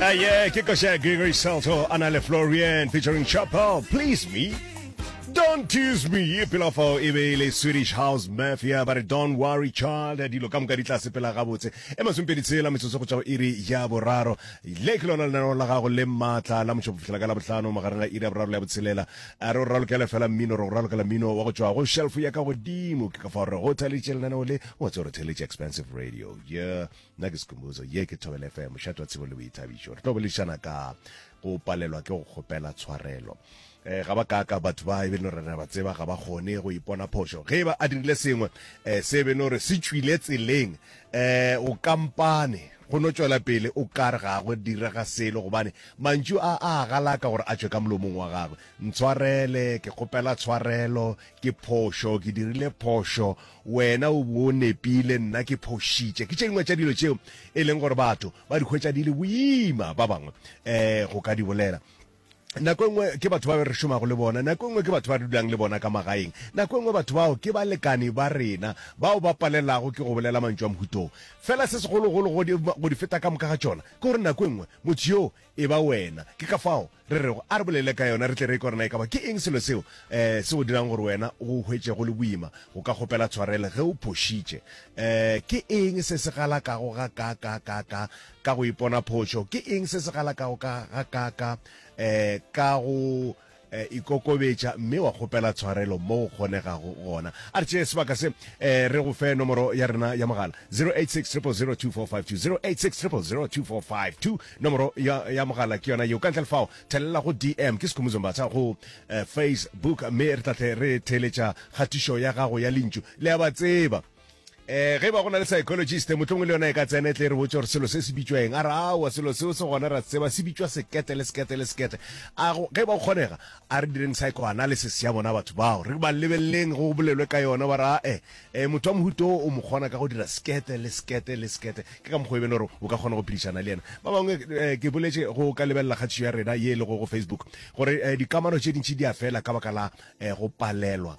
Uh, yeah, ke koša Gregory Salto a na le Florian featuring Chapel, Please Me. Don't tease me ye pela fao e be e le swedish house mafia ba re don't worry child dilo ka moka di tla sepela gabotse e masompedi tshela metsotso go tšwa go iri ya boraro le ke lona lenaneo la gago le maatla la motšho bofitlhela ka la botlhano magareng ga iri ya boraro le ya botshelela a re o ralokele fela mmino re go ralokela mmino wa go tšwa go shelf ya ka godimo ke ka fao re go theletše lenaneo le wa tsoro theletše expensive radio yeah nna ke sekhumbuzo ye ke thobele fm mošate wa tsebo le boithabišo re tlo boledišana ka go palelwa ke go kgopela tshwarelo um ga ba kaka batho ba e be no rena ba tseba ga ba kgone go ipona phošo ge ba a dirile sengwe um se be no re se tšwile tseleng um o kampane go no tšwela pele o kare ga go direga selo gobane mantšu a a galaka gore a tšwe ka molomong wa gagwe ntshwarele ke kgopela tshwarelo ke phošo ke dirile phošo Wena o bo o nepile, nna ke phošitše. Ke tše dingwe tša dilo tšeo e leng gore batho ba di hwetša di le boima, ba bangwe um go ka di bolela. Nako e nngwe ke batho ba re šomago le bona, nako e nngwe ke batho ba re dulang le bona ka magaeng, nako e nngwe batho bao ke balekane ba rena bao ba palelelago ke go bolela mantšu a mohuta wo. Fela se segologolo go di feta ka moka ga tšona ke gore nako e nngwe motho yoo e ba wena. Ke ka fao re rego a re bolele ka yona, re tle re e kwa gore na e ka ba ke eng selo seo um se go dirang gore wena o go hwetše go le boima go ka kgopela tshwarelo ge o phošitše. Um Ke eng se se galakago gakaakaakaakaa ka go ipona phošo? Ke eng se se galakago ka gakaakaakaa um ka go. e, ikokobetša mme wa kgopela tshwarelo mo go kgonegago gona a re tšee sebaka se e, re go fe nomoro ya rena ya mogala 0860002452 nomoro ya, ya mogala ke yona yeo ka ntle le fao thelela go dm ke sekhumuzo mbatha go eh, facebook mme re tla tle re theeletša kgatišo ya gago ya lentšu le ya ba tseba eh ge ba go na le psychologist motlongwe le yona e ka tsena e tle re botse gore selo se se bitšwa eng a re aowa selo seo se gona ra tseba se bitšwa sekete le sekete le sekete a ge ba kgonega a re direng psychoanalysis ya bona batho bao re ba lebeleleng go bolelwe ka yona ba ra e e motho wa mohuto o mo kgona ka go dira sekete le sekete le sekete ke ka mokgwa e bele gore o ka kgona go phedišana le yena ba bangwe eh, ke boletse go ka lebelela kgatišo ya rena ye e lego go facebook gore eh, dikamano tše dintši di a fela ka baka la eh, go palelwa